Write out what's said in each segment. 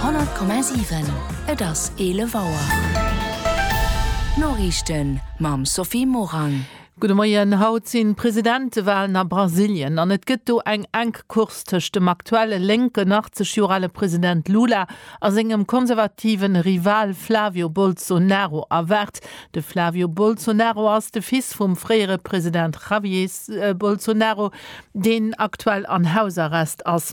100,7 Et ass 11 Auer. D'Noriichten mam Sophie Morang. Gudde Moien. Haut sinn d'Presidentewalen a Brasilien an et gëtt do eng enk Course tëscht dem aktuelle lénken, 80 Joer ale President Lula a sengem konservative Rival Flavio Bolsonaro erwaart. De Flavio Bolsonaro ass de Fils vum fréiere President Javier Bolsonaro, deen aktuell an Hausarrest ass.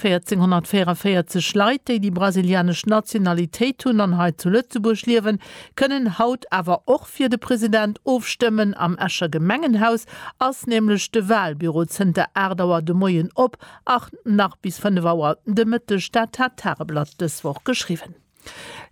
1444 Leit, déi déi brasilianesch Nationalitéit hunn an hei zu Lëtzebuerg liewen, kënnen haut awer och fir de President ofstëmmen. Am Escher Gemengenhaus ass nämlech de Walbüro zënter 8 Auer de Moien op a nach bis 5 Auer de Mëtteg. Dat hat d'Tageblatt dës Woch geschriwwen.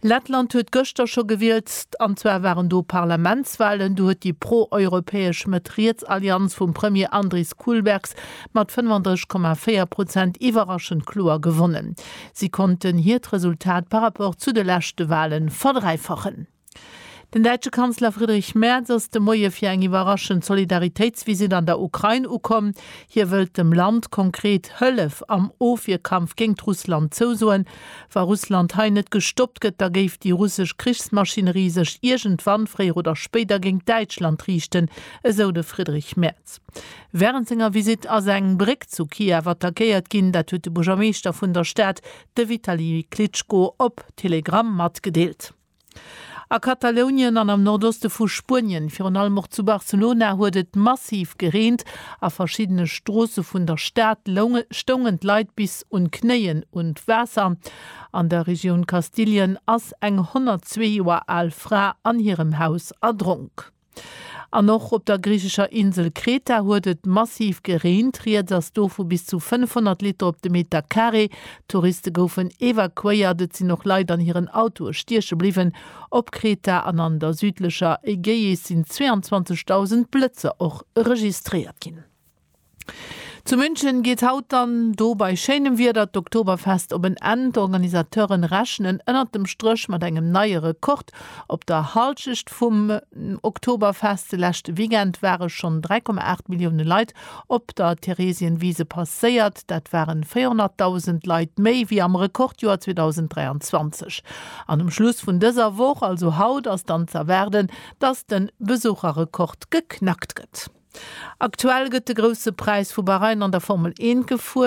Lettland huet gëschter scho gewielt, an zwar waren do Parlamentswalen. Do huet déi pro-europäesch Mëtt-Riets-Allianz vum Premier Andris Kulbergs mat 35,4 Prozent iwwerraschend kloer gewonnen. Si konnten hiert Resultat par rapport zu de leschte Wale verdräifachen. Den däitsche Kanzler Friedrich Merz ass de Moie fir eng iwwerraschend Solidaritéitsvisitt an der Ukrain ukomm. Hie wëllt dem Land konkret Hëllef am Ofwierkampf géint Russland zousoen. Wa Russland hei net gestoppt gëtt, da géif déi russesch Krichsmaschinerie sech iergendwann, fréier oder spéider, géint Däitschland riichten, esou de Friedrich Merz. Wärend senger Visitt ass eng Bréck zu Kiew attackéiert ginn. Dat huet de Buergermeeschter vun der Stad, de Vitali Klitschko, op Telegram matgedeelt. A Katalounien an am Nordoste vu Spuenien, virun allem och zu Barcelona, huet et massiv gereent. A verschiddene Stroosse vun der Stad stoungen d'Leit bis un d'Knéien un d'Waasser. An der Regioun Kastilien ass eng 102 Joer al Fra an hirem Haus erdronk. An och op der griichescher Insel Kreta huet et massiv gereent. Rieds ass do vu bis zu 500 Liter op de Meter Carré. Touriste goufen evakuéiert. Et sinn och Leit an hiren Autoe stieche bliwwen. Op Kreta an an der südlecher Ägäis sinn 22.000 Blëtzer och registréiert ginn. Zu München geet haut dann do bei schéinem Wieder d'Oktoberfest op en Enn. D'Organisateuren rechnen ënnert dem Stréch mat engem neie Rekord. Op der Halschecht vum Oktoberfest de leschte Weekend ware schonn 3,8 Millioune Leit op der Theresienwiese passéiert. Dat ware 400.000 Leit méi wéi am Rekordjoer 2023. An um Schluss vun dëser Woch, also haut, ass dann z'erwaarden, dass de Besucherrekord geknackt gëtt. Aktuell gëtt de Grousse Präis vu Bahrain an der Formel Eent gefuer.